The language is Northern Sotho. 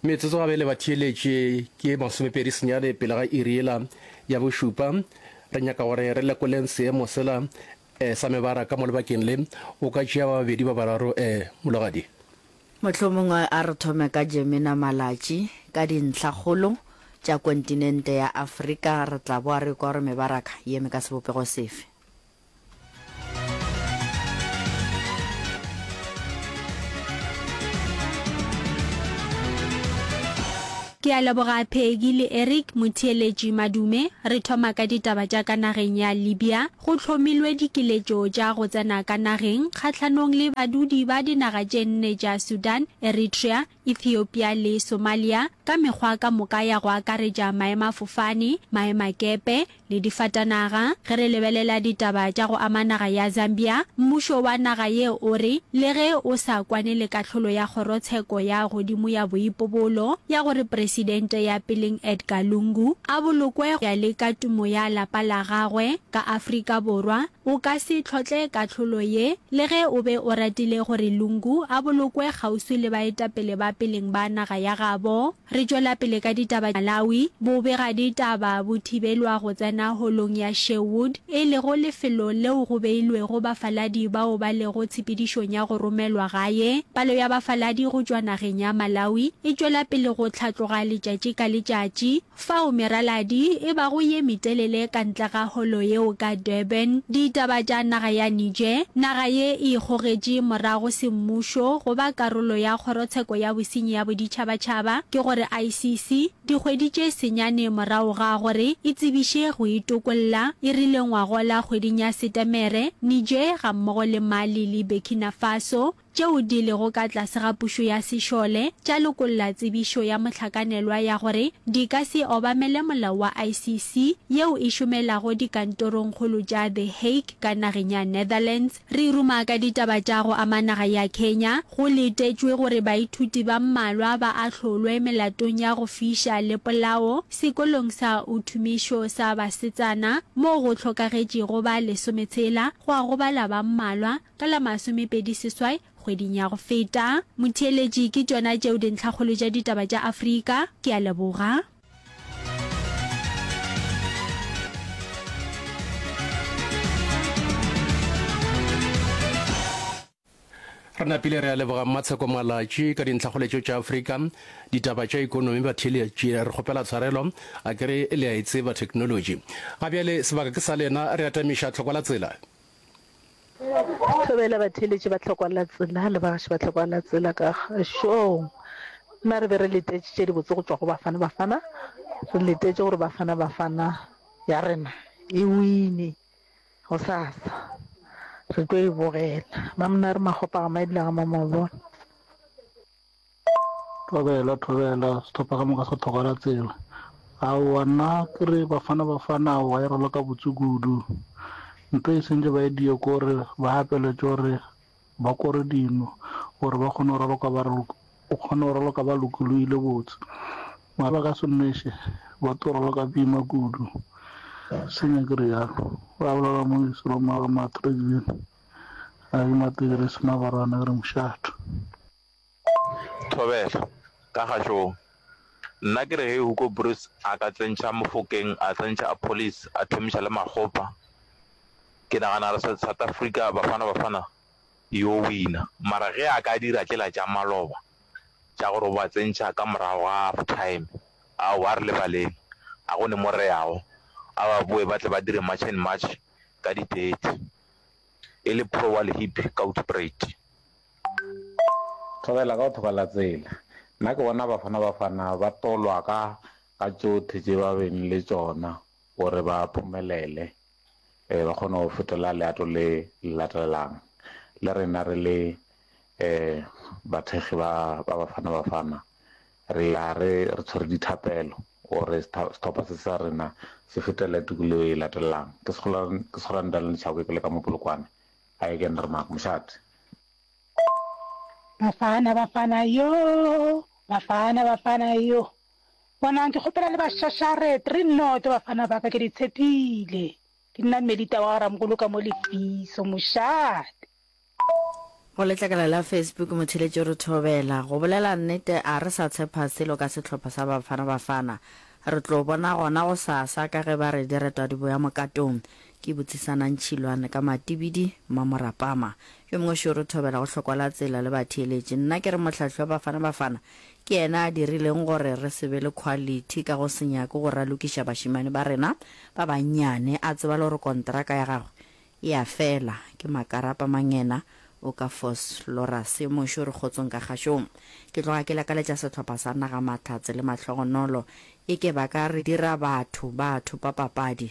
metsotso gabe le batheeletše ke masomepedi senyane pele ga iri yela ya bošupa re nyaka gore re lekoleng seemo sela um sa mebara ka mo lebakeng le o ka tšea ba babedi ba bararo um mologadi mohlomongwe a re thome ka jemina malatši ka dintlhakgolo tša kontinente ya afrika re tla boa re kwa gore mebaraka ye me ka sebopego sefe Ke a leboga Peggy le Eric motheeletši madume. Re thoma ka ditaba tša ka nageng ya Libya. Go hlomilwe dikiletšo tša go tsena ka nageng kgahlanong le badudi ba dinaga tše nne tša Sudan, Eritrea, Ethiopia le Somalia ka mekgwa ka moka ya go akaretša maemafofane, maemakepe le difatanaga. Ge re lebelela ditaba tša go ama naga ya Zambia, mmušo wa naga ye o re le ge o sa kwane le kahlolo ya kgorotsheko ya godimo ya boipobolo ya gore presidente ya peleng Edgar Lungu a bolokwe go ya le ka tumo ya lapa la gagwe ka Afrika Borwa, O ka se tlhotle kahlolo ye, le ge o be o ratile gore Lungu a bolokwe kgauswi le baetapele ba peleng ba naga ya gabo. Re tšwela pele ka ditaba Malawi, bobegaditaba bo thibelwa go tsena holong ya Sherwood, e lego lefelo leo go beilwego bafaladi bao ba lego tshepedišong ya go romelwa gae. Palo ya bafaladi go tšwa nageng ya Malawi e tšwela pele go hlatloga letšatši ka letšatši. Fao meraladi e bago ye metelele ka ntle ga holo yeo ka Durban, ditaba tša naga ya Niger, naga ye e ikgogetše morago semmušo go ba karolo ya Kgorotsheko ya Bosenyi ya Boditšhabatšhaba, ke go re ICC, dikgwedi tše senyane morago ga gore e tsebiše go itokolla, e rile ngwagola kgweding ya Setemere, Niger gammogo le Mali le Burkina Faso, tšeo di lego ka tlase ga pušo ya sešole tša lokolla tsebišo ya mohlakanelwa ya gore di ka se obamele molao wa ICC yeo e šomelago dikantorongkgolo tša The Hague ka nageng ya Netherlands. Re ruma ka ditaba tša go ama naga ya Kenya. Go letetšwe gore baithuti ba mmalwa ba ahlolwe melatong ya go fiša le polao sekolong sa Utumisho sa basetsana moo go hlokagetšego ba lesometshela, gwa gobala ba mmalwa, Ka la masomepedi seswai kgweding ya go feta. Motheeletši, Ke tšona tšeo dintlhakgolo tša ditaba tša Afrika. Ke a leboga. Re napile re a leboga Mmatsheko Malatši ka dintlhagoletšo tša Afrika. Ditaba tša ikonomi batheeletši re kgopela tshwarelo a ke re le a e tseba technology. Ga bjale sebaka ke sa lena re atamiša tlhoko la tsela. Thobela batheeletši ba tlhokwalatsela le bagaši ba tlhokwalatsela ka šong. Na re be re letetše tše dibotse go tšwa go Bafana Bafana? Re letetše gore Bafana Bafana ya rena e wine gosasa. Re tlo e bogela. Mamnare Makgopa ga Maedila ga Mamabolo. Thobela, thobela, sehlopha ka moka sa thogela tsela. Aowa nna ke re Bafana Bafana aowa e raloka botse kudu. Ntho e sentše ba e diye ke gore ba apeletše gore ba kore dino gore ba kgone go raloka ba re o kgone go raloka ba lokologile botse. Mara ba ka se nweše ba tlo raloka boima kudu. Senya ke realo. Go abolela Moiso le Matrix bjale. Ga ke mate ke re Semabarana ke re mošate. Thobela, ka kgašong, Nna ke re ge Hugo Broos a ka tsentšha Mofokeng, a tsentšha Appollis, a thomiša le Makgopa, ke nagana re South Africa, Bafana Bafana e yo wina. Mara ge a ka dira tšela tša maloba tša gore o ba tsentšha ka morago ga half time, aowa a re lebaleng, ga go ne mo re yago. A ba boe ba tle ba dire March and March ka di thirty e le pro wa Lehip ka Hoedspruit. Thobela ka go thoko la tsela. Nna ke bona Bafana Bafana ba tolwa ka ka tšothe tše ba beng le tšona gore ba phumelele um ba kgone go fetola leato le le latelelang. Le rena re le um bathekgi ba ba Bafana Bafana re ya re re tshwere dithapelo gore sehlopha se sa rena se fetele tukelo e latelang. Ke ke Skhurana Daniel Tshakwe ke le ka mo Polokwane. Hi again Rra Mark Moshat. Bafana Bafana yoo Bafana Bafana yo Bonang ke kgopela le ba shashare three noto bafana ba ka ke di tshepile ke nna Melita wa Ramogolo ka mo lefiso Moshat. Go letlakala la Facebook Motheletši re thobela go bolela nnete a re sa tshepa selo ka sehlopha sa Bafana Bafana re tlo bona gona gosasa ka ge ba re diretwa di boya mokatong Ke botsisana ntšhilwane ka matibidi, Mmamorapama. Yo mongwe šoro o thobela go hlokwa la tsela le batheeletši. Nna ke re Mohlahli wa Bafana Bafana ke yena a dirileng gore re se be le quality ka go se nyake go ralokiša bašemane ba rena ba bannyane. A tseba le gore konteraka ya gagwe e a fela. Ke makarapa mangena o ka Vosloorus. Yo mongwe šoro Kgotsong ka kgašong. Ke tloga ke lakaletša sehlopha sa naga mahlatse le mahlogonolo. E ke ba ka re dira batho ba thopa papadi.